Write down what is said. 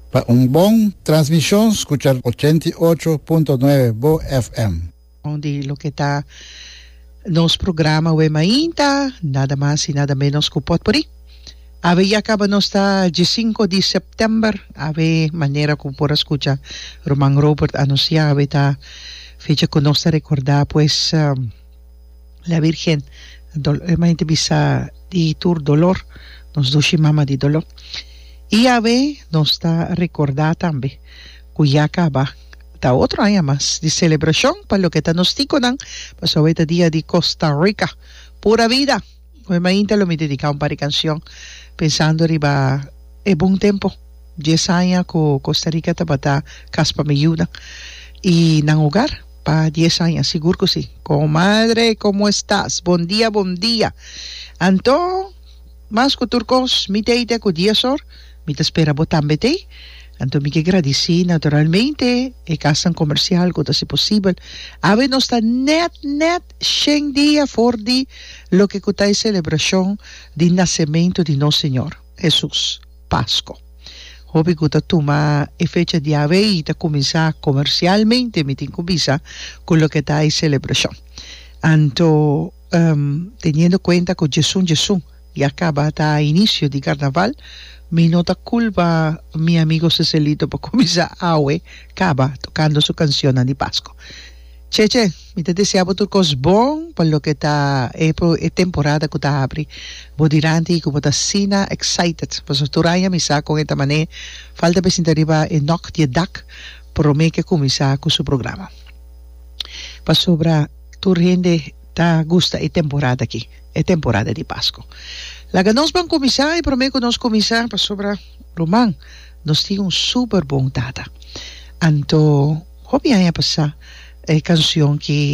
Pa un bon transmishon skucha ochenta i ocho punto nuebe Bo FM. Bon di loke ta nos programa awe mainta, nada mas i nada menos ku potpuri. Awe ya kaba nos ta dje sinku di sèptèmber, awe manera ku por a skucha Ruman Robert anunsiá awe ta fecha ku nos ta rekordá pues. La Virgen dol e mai te bisa di tur dolor nos dushi mama di dolor y a ve nos ta recorda tambe cu ya caba ta otro aña mas di celebracion pa loke ta nos ticonan pasobra e ta dia di Costa Rica pura vida. Oe mainta lo mi dediká un par di kanshon pensando riba e bon tempu, dies aña ku Kosta Rika tabata kas pa mi yuda i nan hogar pa dies aña, sigur ku si. Komadre komo estas? Bon dia, bon dia! Anto, mas ku tur kos, mi t'ei te ku dies or, mi ta spera bo tambe t'ei. Anto mi ke gradisí naturalmente e kasnan komersial ku ta hasi posibel. Awe nos ta nèt nèt shen dia for di loke ku ta e selebrashon di nasementu di nos Señor, Hesus, Pasko. Hopi ku ta tuma e fecha diawe ei ta kuminsá komersialmente, mi tin ku bisa, ku loke ta e selebrashon. Anto, teniendo kuenta ku Jesun Jesun ya kaba ta inisio di karnaval, mi no ta kulpa mi amigo Cecelito pa kuminsá awe kaba tokando su kansionnan di Pasko. Cheche, mi ta desea bo tur kos bon pa loke ta e e temporada ku ta abri. Bo diranti i ku bo ta asina excited pasobra tur aña mi sa kon e ta man'é falta presinta riba e nok di e dak promé ke kuminsá ku su programa. Pasobra tur hende ta gusta e temporada aki, e temporada di Pasko. Laga nos ban kuminsá i promé ku nos kuminsá pasobra ruman. Nos tin un super bon tata. Anto hopi aña pasá e cancion ki